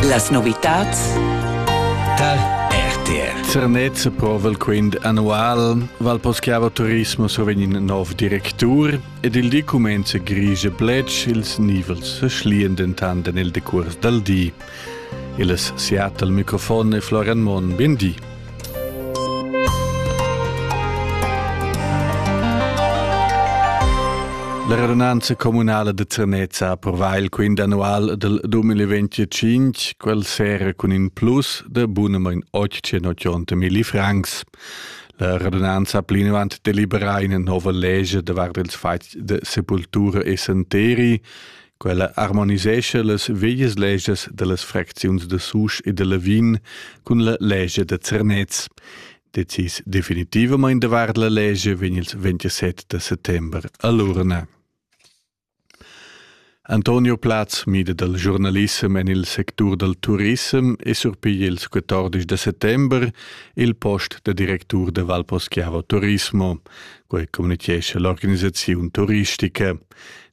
Las novitads tar RTR. Zernez provel quint annual val poschiava turismo sovin in nov directur ed il di comenza grigia blec ils nivels schlian dentan den il decurs dal di. Il Seattle microfon e Florian Mon, ben di. La radunanza communala de Ternezza ha approvà il quint annual del 2025, quel sera cun in plus de bunamain 880 mili francs. La radunanza ha plinavant deliberà ina nova legge davart ils fatgs de sepultura e santeri, Quella harmonisescha las veglias legias dallas fracziuns da Susch e da Lavin cun la legia da Zernez. Decis definitivamain davart la legia vegn il 27 da settembre a l'urna. Antonio Platz mida dal giornalissem en il sectur dal turissem e surpiglia ils 14 da settembre il post da directur da Valposchiavo Turismo, quai communichescha l'organisaziun turistica.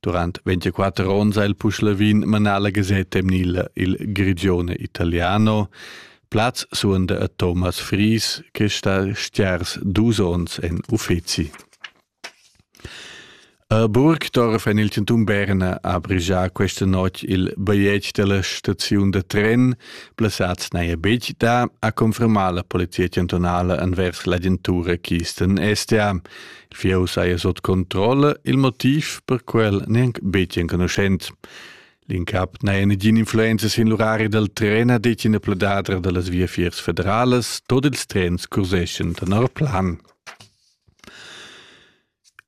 Durant 24 onns ha il Puschlavin manà la gasetta emnila Il Grigione Italiano. Plaz suonda a Thomas Fries, che sta stiers dus onns en uffeci. A Burgdorf en il Centum Berna ha brigià questa notg il bigliet della staziun da tren. Plaçats n'haja betg da, ha confermà la polizia chantunala envers l'agentura Kisten STA. Fieu saja sot controlla il motiv per quel neanc betg enconuschent. L'incap n'haja negin influenza sin l'urari dal tren a detg ina pledadra da las viafiers federalas, tot ils trens curseschan tenor plan.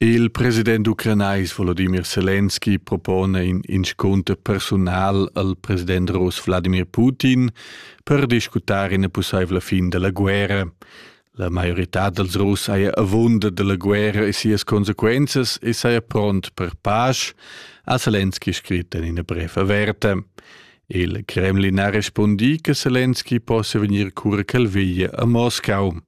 Il president ucranais Volodymyr Selenski propone in inscunter personal al president rus Vladimir Putin per discutar ina possibla fin della guerra. La maiorità dals Russ haja avunda dalla guerra e sias consequenzas e saja pront per pasch, ha Zelensky scrit en ina bref averta. Il Kremlin ha respundì che Zelensky possia vegnir cura ch'el veglia a Moscau.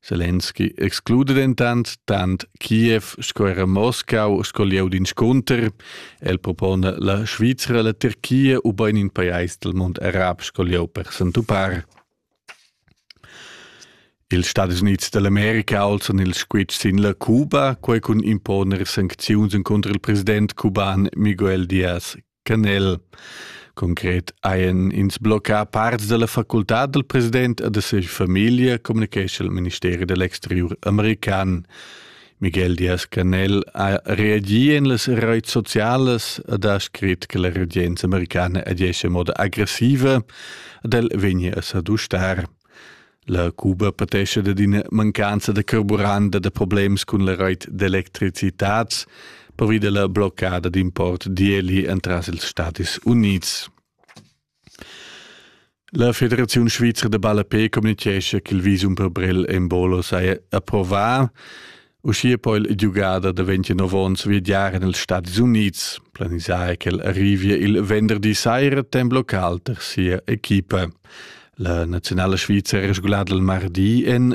Zelensky exclude dentant tant Kiev sco era Moscau sco lieu d'inscunter. El propona la Svizra, la Turchia ubain in pajais dal mund arab sco lieu per s'entupar. Ils Stadis Unids dall'America alzan ils squitschs sin la Cuba, quei cun imponer sancziuns encunter il president cuban Miguel Diaz-Canel. Concret hajan ins bloccà parts dalla facultad dal president e da sia famiglia, communicescha il ministeri dall'exteriur american. Miguel Diaz-Canel ha reagi en las reits socialas ed ha scrit che la regenza americana agesce in moda aggressiva ed el vegnia a sadustar. La Cuba patesce da d'ina mancanza da carburant e da problems cun la reit d'electricitat pervi della bloccada d'import d'ieli entras ils Stati Units. La Federaziun svizra da ballapè communitgescha ch'il visum per Brel Embolo saja approvà. Uschia po il giugader da 29 onns viagiar en ils Stadis Unids. Planisà è ch'el arrivia il venderdi saira temp local tar sia equipa. La naziunala svizra è resgulada il mardi en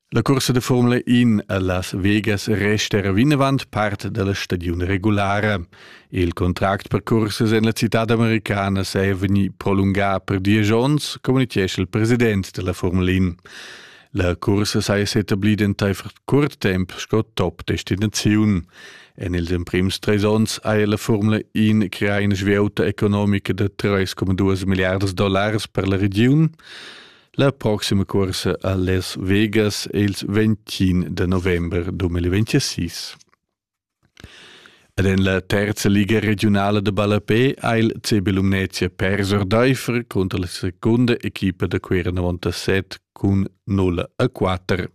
La cursa da Formula 1 a Las Vegas resta era vinavant part da la stagiun regulara. Il contract per cursas en la citad americana è vegnì prolungà per diesch onns, communitgescha il president da la Formula 1. La cursa saja s'etablida entaifer curt temp sco top-destinaziun. En ils emprims trais onns haja la Formula 1 creà ina svieuta economica da 3,2 milliards dollars per la regiun. La proxima corsa a Las Vegas è il 21 de november 2026. Ed en la terza liga regionala de ballapé ha il CB Lumnezia perso Deifer contro la seconda equipa da Cuera 97 cun 0 a 4.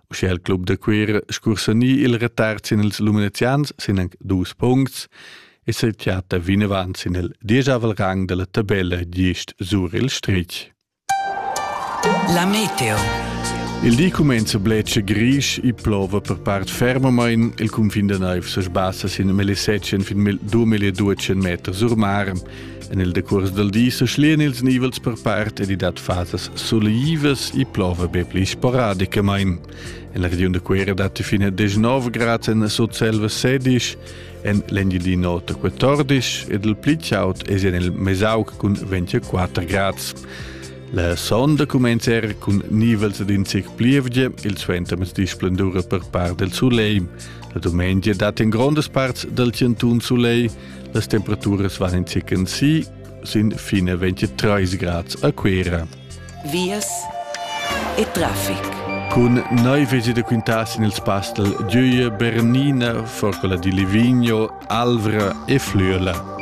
Uschè il club da Cuera scursa ni il retard sin ils lumenezians sin anc dus puncts es il teater vinavant sin il dieschavel rang della tabella gist sur il strich. La meteo. Il di cumenza bletscha grisch e plova per part fermamain. Il cunfin da naiv se sbassa sin millisettchen fin 2200 meter sur mar. En il decurs del di se schlien ils nivels per part ed i dat fasas soleivas e plova be pli sporadicamain. En la regiun de Cuera dat fine 19 grad en Sotselva 16 en l'Engiadin'Ota 14 ed il pli chaud es en il Mesauc cun 24 grads. La sonda cumenza er cun nivels d'in zic plievgia, il suentermezdi splendura per part del soleil. La dumengia dat in grondas parts del centun soleil, las temperaturas van in zic in si, sin fine 23 grads a Cuera. vias e traffic. Cun noi vesi de quintas in il spastel Dieue, Bernina, Forcola di Livigno, Alvra e Flüela.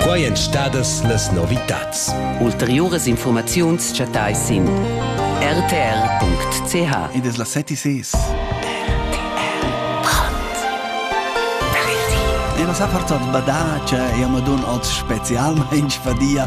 Quai èn stadas las novitats. Ulteriuras informaziuns chattai sin rtr.ch. Ed es la seti ses. E nos ha portat badace e amadun oz specialmain fadia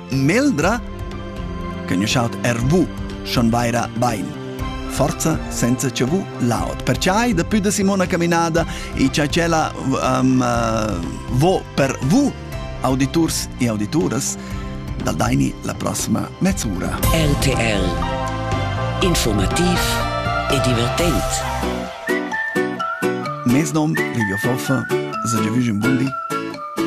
Meldra? Che nu schaut er vu, schon vaira bain. Forza senza che vu laot. Perciai da più da Simona Caminada e cha tschella um, uh, vo per vu auditurs e audituras dal Daini la prossima mezz'ora. RTL Informativ e divertent. Mes nom Livio Foffa, se giovüge un buon di.